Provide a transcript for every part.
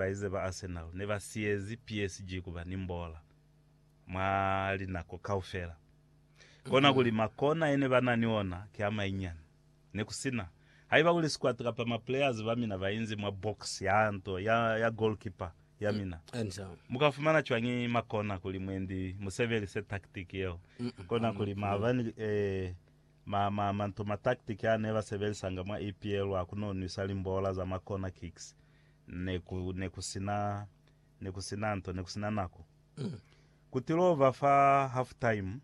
Baize ba Arsenal ne ba siyezi PSG kuba ni mbola mwa linako kaufela. Kona kuli makona yene ba na ni ona ki a mainyani. Ne ku si na haiba kuli squad kapa ma players ba mina ba inzi mwa box ya nto ya ya goalkeeper ya mina. Mu ka fumana cwañi makona kuli mwendi mu sebelise tactic yeo? Kona kuli maba ni ma ma manto ma tactic a ne ba sebelisanga mwa EPL a ku no nwisa limbola za ma corner kicks Ne ku, ne ku sina, ne ku sina nto, ne ku sina nako. Ku tilova fa half-time,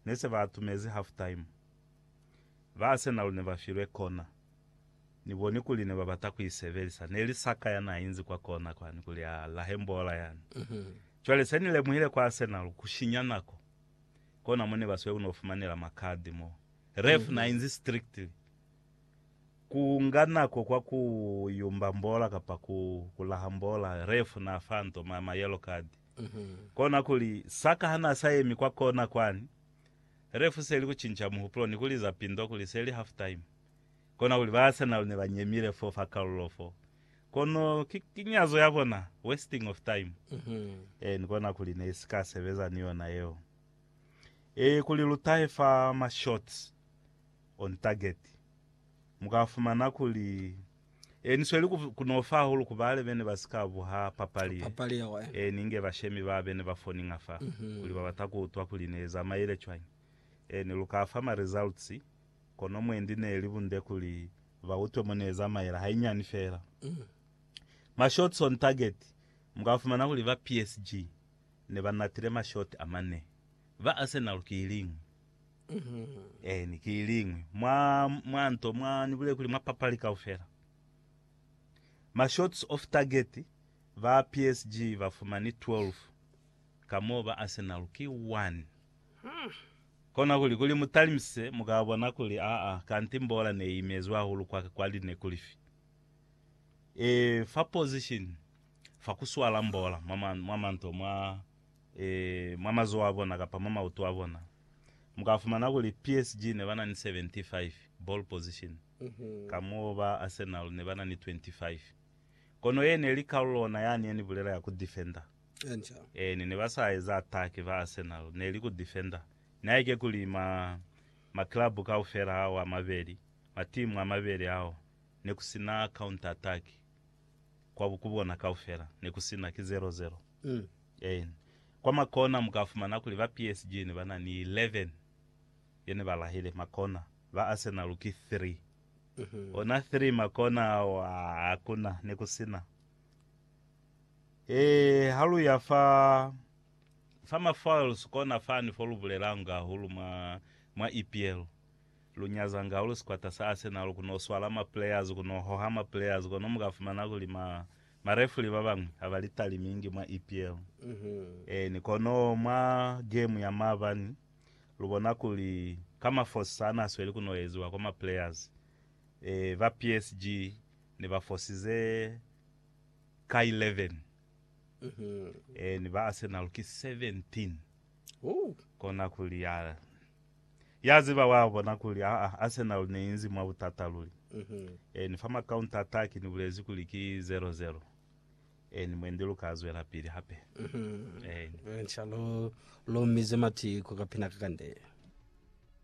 ne se ba atumezi half-time. Ba Arsenal ne ba filwe kona. Ni boni kuli ne ba bata ku i sebelisa. Ne li Saka ya n'a inzi kwa kona kwani kuli a lahe mbola yani. Cwale se ni lemuhile kwa Arsenal, ku shinya nako. Kona mo ne ba sweli ku n'o fumanela makadi mo. Ref n'a inzi strictly. Ku nga nako kwa ku yumba mbola kapa ku kulaha mbola, ref na fa Ntoma ma yellow card. Kona kuli, Saka ha na sa yemi kwa kona kwani, ref seli ku cinca muhupulo ni ku liza pindo kuli seli half time. Kona kuli, Ba Arsenal ne ba nyemile fo fa kalulo fo, kono ki kinyazo ya bona, wasting of time. Ee, ni kona kuli ne si ka sebeza ni yona yeo. Ee, kuli lu tahe fa ma shots, On Target, mu ka fumana kuli e ni sweli ku n'o fa hahulu ku bale be ne ba si ka buha papali ye ni nge bashemi ba be ne ba foninga fa kuli ba bata ku utwa kuli ne i zamaile cwañi. E ne lu ka fa ma results, kono mwendi ne li bunde kuli ba utwe mo ne zamaila hainyani feela. Ma shots on target, Mu ka fumana kuli ba PSG ne ba natile ma shot a mane. Ba Arsenal ki iliñwi. Eeni, ki iliñwi. Mwa, mwa nto, mwa, Ni bulele kuli mwa papali kaufela. Ma shots off target, ba PSG ba fumani 12, ka mo ba Arsenal ki 1. Kona kuli, kuli mu talimise, mu ka bona kuli, aa, kanti mbola ne i imezwe hahulu kwa, kwa line kulifi. E, fa position, fa ku swala mbola, mwa, mwa, mwa manto, mwa. mwa mazoho a bona kapa mwa mautu a bona. Mu ka fumana kuli PSG ne ba na ni 75 ball position, kamoo ba Arsenal ne ba na ni 25. Kono ye ne li kalulo ona yani ye ni bulela ya ku defender. Eeni, ne ba sa eza atake, ba Arsenal, ne li ku defender. Nihaike kuli ma, ma club kaufela ao a mabeli, matimu a mabeli ao, ne ku si na counter-attack kwa, ku bona kaufela, ne ku si na, ki zero-zero. Eena. Kwa makona mukafumana kuli ba PSG nebana ni 11 ye nebalahile makona, ba Arsenal ki 3. Ona 3 makona ao hakuna nekusina. Ee, ha luya fa fa ma foils kona fani fo lubulelanga hahulu mwa mwa EPL. Lu nyazanga hahulu sikwata sa Arsenal kuno swala ma players, kuno hoha ma players, kono mukafumana kuli ma Marefri ba bañwi ha ba li talimingi mwa EPL. Eeni, kono mwa gemu ya maabani lu bona kuli ka mafosi a n'a sweli ku noeziwa kwa ma players, ee, ba PSG ne ba fosize ka 11, eeni, ba Arsenal ki 17. Kona kuli, aa, Ya ziba wa bona kuli haa Arsenal ne inzi mwa butata luli. Eni fa ma counter attack ni bulezi kuli ki zero zero. Eni mwendi lu ka zwela pili hape. Eni. Inca lu lomize matiku ka pina ka kande.